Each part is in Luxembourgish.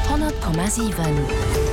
100,7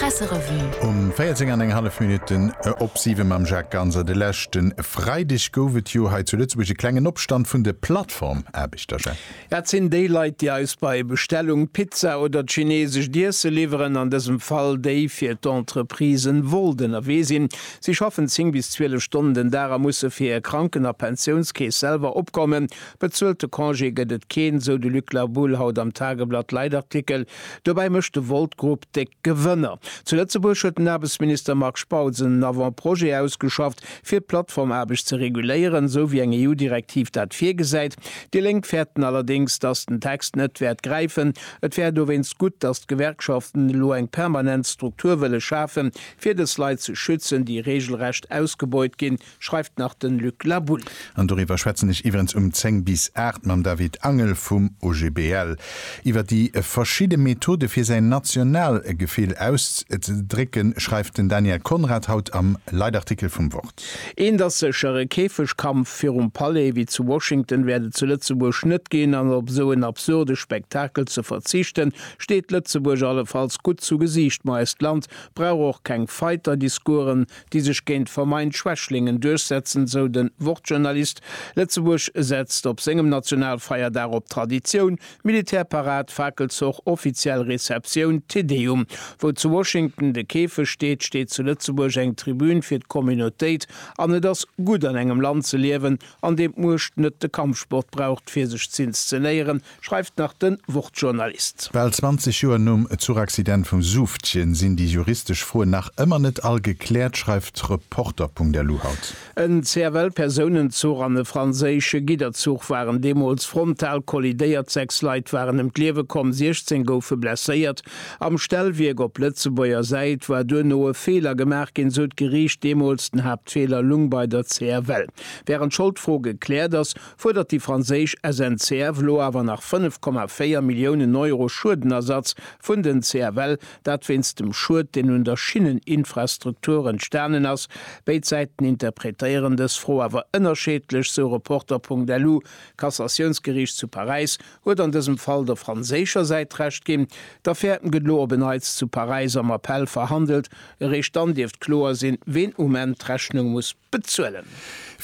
Presserevue. Um 14 an eng hallef Minutten op 7 mam Jacques Ganser. De leschte Freideg gouf et jo hei zu Lëtzebuerg e klengen Opstand vun de Plattform-Aarbechter, Jacques. Ja, et sinn déi Leit, déi eis bei Bestellung d'Pizza oder d'chinesescht Iesse liwweren, an dësem Fall déi fir d'Entreprisen wollt ënnerwee sinn. Si schaffen 10 bis 12 Stonnen den Dag a musse fir hir Kranken a Pensiounskeess selwer opkommen. Bezuelte Congé gëtt et keen, sou de Luc La Boule haut am Tageblatt Leitartikel. Dobäi mécht de Volt Group déck Gewënner. Zu Lëtzebuerg huet den Aarbechtsminister Marc Spautz en Avant-Projet ausgeschafft, fir d'Plattformaarbecht ze reguléieren, esou wéi eng EU-Direktiv dat virgesäit. Déi Lénk fäerten allerdéngs, datt den Text net wäert gräifen. Et wär dowéinst gutt, datt d'Gewerkschaften elo eng permanent Struktur wëlle schafen, fir dës Leit ze schützen, déi reegelrecht ausgebeut ginn. schreift nach den Luc Laboul. An doriwwer schwätzen ech iwwerens um 10 bis 8 mam David Angel vum OGBL. Iwwer déi verschidde Methode fir säin Nationalgefill auszedrécken, schreift den Daniel Conrad haut am Leitartikel vum Wort. Eent ass sécher, e Käfegkampf virum Palais wéi zu Washington wäert et zu Lëtzebuerg net ginn, an op esou en absurde Spektakel ze verzichten, steet Lëtzebuerg allefalls gutt zu Gesiicht. Ma eist Land brauch och keng Fighter-Discoursen, déi sech géint vermeint Schwächlingen duerchsetzen, sou den Wort-Journalist. Lëtzebuerg setzt op sengem Nationalfeierdag op Traditioun, Militärparad, Fakelzoch, offiziell Receptioun, Te Deum. Wou zu Washington de Käfeg steet, steet zu Lëtzebuerg eng Tribün fir d'Communautéit an et ass gutt an engem Land ze liewen, an deem d'Muecht net de Kampfsport braucht fir sech z'inszenéieren, schreift nach den Wort-Journalist. Bal 20 Joer nom Zuchaccident vum Suuftchen sinn déi juristesch Froen nach ëmmer net all gekläert, schreift Reporter.lu haut. En CFL-Persounenzuch an e franséische Gidderzuch waren deemools frontal kollidéiert, sechs Leit waren ëm d'Liewe komm, 16 goufe blesséiert. Am Stellwierk op Lëtzebuerger Säit war duerno e Feeler gemaach ginn, sou d'Geriicht deemools. Den Haaptfeeler lung bei der CFL. Wärend d'Scholdfro gekläert ass, fuerdert déi franséisch SNCF lo awer nach 5,4 Milliounen Euro Schuedenersatz vun den CFL, dat wéinst dem Schued, deen un der Schinneninfrastruktur entstanen ass. Béid Säiten interpretéieren dës Fro awer ënnerscheedlech, sou Reporter.lu. D'Cassatiounsgeriicht zu Paräis huet an dësem Fall der franséischer Säit Recht ginn. D'Affär gëtt lo op en Neits zu Paräis am Appell verhandelt. Eréischt dann dierft kloer sinn, ween um Enn d'Rechnung muss. bezuelen.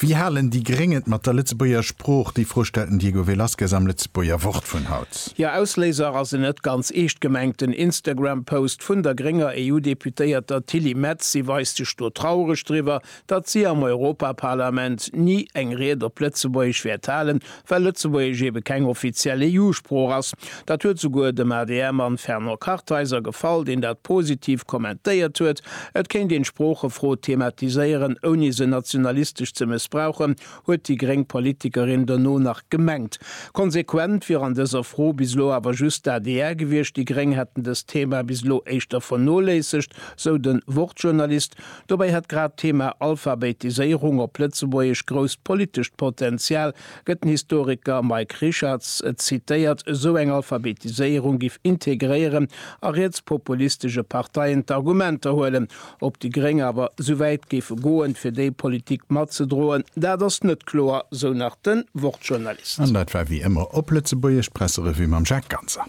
Wéi halen déi Gréng et mat der Lëtzebuerger Sprooch? Déi Fro stellt den Diego Velasquez am Lëtzebuerger Wort vun haut. Jo, Ausléiser ass en net ganz eescht gemengten Instagram-Post vun der grénger EU-Deputéierter Tilly Metz. Si weist sech do traureg driwwer, datt si am Europaparlament ni eng Ried op Lëtzebuergesch wäert halen, Well Lëtzebuergesch ebe keng offiziell EU-Sprooch ass. Dat huet souguer dem ADR-Mann Fernand Kartheiser gefall, deen dat positiv kommentéiert huet. Et kéint een d'Sproochefro thematiséieren, ouni se nationalistesch ze mëssbrauchen, huet déi gréng Politikerin dono nach gemengt. Konsequent wier an dëser Fro bis elo awer just d'ADR gewiescht. Déi gréng hätten dëst Thema bis elo éischter vernoléissegt, sou de Wort-Journalist. Dobäi hätt grad d'Thema Alphabetiséierung op Lëtzebuergesch grousst politescht Potenzial, gëtt den Historiker Mike Richartz zitéiert. Esou eng Alphabetiséierung giff integréieren a rietspopulistesche Parteien d'Argumenter huelen. Ob déi Gréng awer esou wäit géife goen, fir déi Politik matzedroen, dat ass net kloer, sou nach de Wort-Journalist. An dat war wéi ëmmer op Lëtzebuergesch d'Presserevue mam Jacques Ganser.